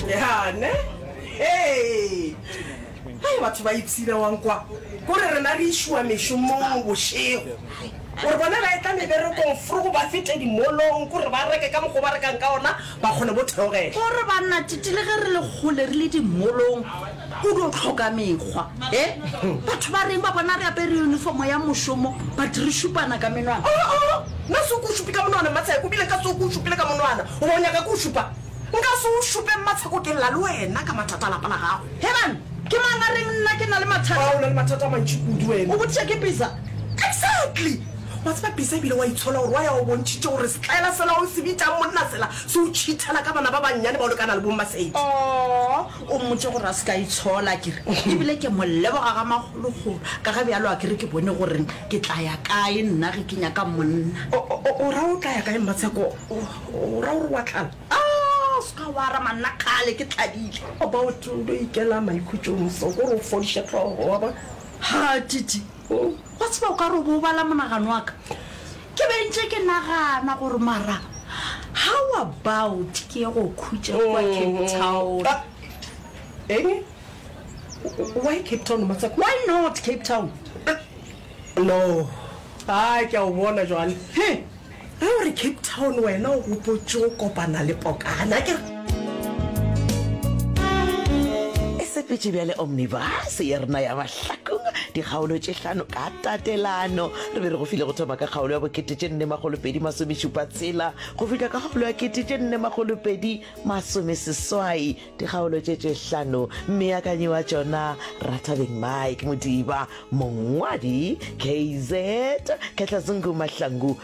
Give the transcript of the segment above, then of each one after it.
yane hey hai batho ba ipsina wang kwa gore rena re išwa mešomong bošego gore bona ba etla meberekong fro go ba fete dimolong gore ba reke ka mokgo ba rekang ka ona ba kgone bo theogela gore banna titile ge re le kgole re le dimolong O dio hloka mekgwa. He? Batho ba reng ba bona re apere uniformo ya mošomo but re šupana ka menwana? Oh, oh, nna se o ke o šupi ka monwana, Mmatsheko, ebile nka se o ke o šupile ka monwana. Goba o nyaka ke o šupa? Nka se o šupe, Mmatsheko, ke lla le wena ka mathata a lapa la gago. Herman, ke mang a reng nna ke na le mathata? Wa, o na le mathata a mantši kudu wena. O botšiša ke Bisa? Exactly! Wa tseba Bisa ebile wa itshola gore wa ya o bontšhitše gore setlaela sela o se bitšang monna sela se o tšhithela ka bana ba bannyane bao le ka na le bo Mmasedi. Aww, O mmotše gore a se ke a itshola, a kere, e bile ke mo leboga ga magologolo, ka ge bjalo a kere ke bone gore ke tla ya kae nna ge ke nyaka monna. O, o, o ra o tla ya kae, Mmatsheko? O, o ra gore wa tlala? A, o se ka wa ra, manna, kgale ke tladile. About o no ikela maikhutšong so, gore o fodiše hlogo, wa bona. Ha, Titi, wa tseba o ka re o bo o bala monagano wa ka. Ke be ntše ke nagana gore mara how about ke ye go khutša kwa Cape Town. Eng? Why Cape Town motswako? Why not Cape Town? No, a ke a o bona jwale. He, ge o re Cape Town wena o gopotše go kopana le pokana akere? E sepetše bjale omnibus ya rena ya ba. hlakong dikgaolo tše hlano ka tatelano re be re go file go thoma ka kgaolo ya bokete tše nne magolopedi masomešupa tshela go fihla ka kgaolo ya kete tše nne magolopedi masomeseswai dikgaolo tše tše hlano meakanyi wa tšona rathabeng mike modiba mongwadi kz khetlazungu mahlangu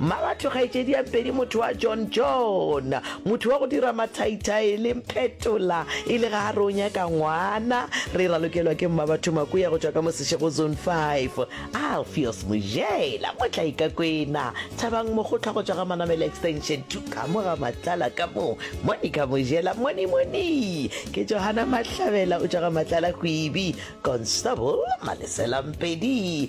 Mmabatho kgaetšediampedi motho wa John John, motho wa go dira mathaithai le mphetola e le ga a re o nyaka ngwana. Re ralokelwa ke Mmabatho Makuya go tšwa ka Mosešego Zone 5, Alfios Mojela mo Tlaikakwena, Thabang Mokgotlha go tšwa ga Manamela Extension 2 ka mo ga Matlala ka mo, Monica Mojela Monimoni ke Johana Mahlabela o tšwa ga Matlala Kwibi, Constable Malesela Mpedi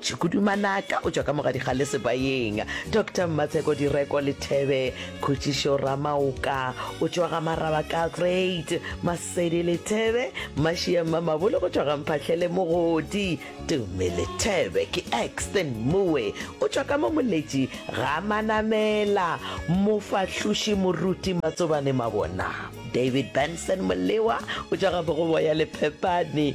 Tshukudu Manaka o tšwa ka mogadikgale Sebayeng. Doctor Mmatsheko Direko Lethebe Khutšišo Ramaoka o tšwa ga Maraba ka Great. Masedi Lethebe Mašia Mmamabolo go tšwa ga Mphahlele Mogodi. Tume Lethebe ke Exton Moe o tšwa ka mo Moletši ga Manamela. Mofahloši Moruti Matsobane Mabona. David Benson Molewa o tšwa ga Bogoboya Lephepane.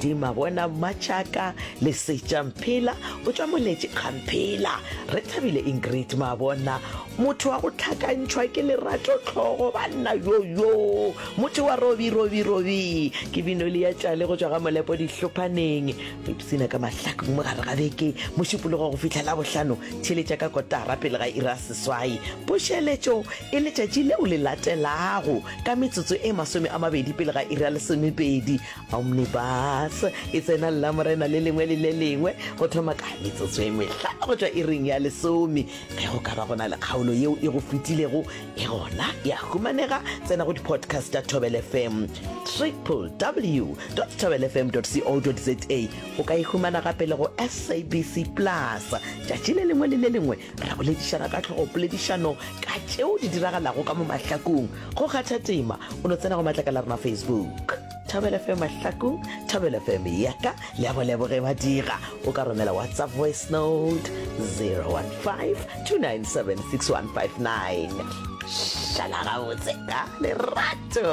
dima bona matšaka lesetša mphela o tšwa moletše kgamphela re thabile ingrid ma bona motho wa go tlhakantšhwa ke lerato tlhogo banna yoyo motho wa robi robi robi ke bino le ya tšale go tšwa ga molepo dihlophaneng re ipsina ka mahlako mo gare ga beke mošupologo go fitlhela bohlano theletša ka kotara pele ga ira seswai pošeletšo e letšatši leo le latelago ka metsotso e masome a mabedi pele ga iri ya lesomepedi omnibus e tsena llamorena le lengwe le le lengwe go thoma ka metsotso e mehla go tšwa iring ya lesome ge go ka ba go na le kgaolo yeo e go fetilego e gona ya humanega tsena go di-podcast tša tobel fm triple w tobel fm co za o ka e humana gape le go sabc plus tšatši le lengwe le le lengwe re ya boledišana ka tlhogo poledišano ka tšeo di diragalago ka mo mahlakong go kgatha tema o no tsena go matlakala rena facebook thobele fm mahlakong thobele fm yaka le ya boleboge ba dira o ka romela whatsapp voice note 015 2976159 šala gabotse ka lerato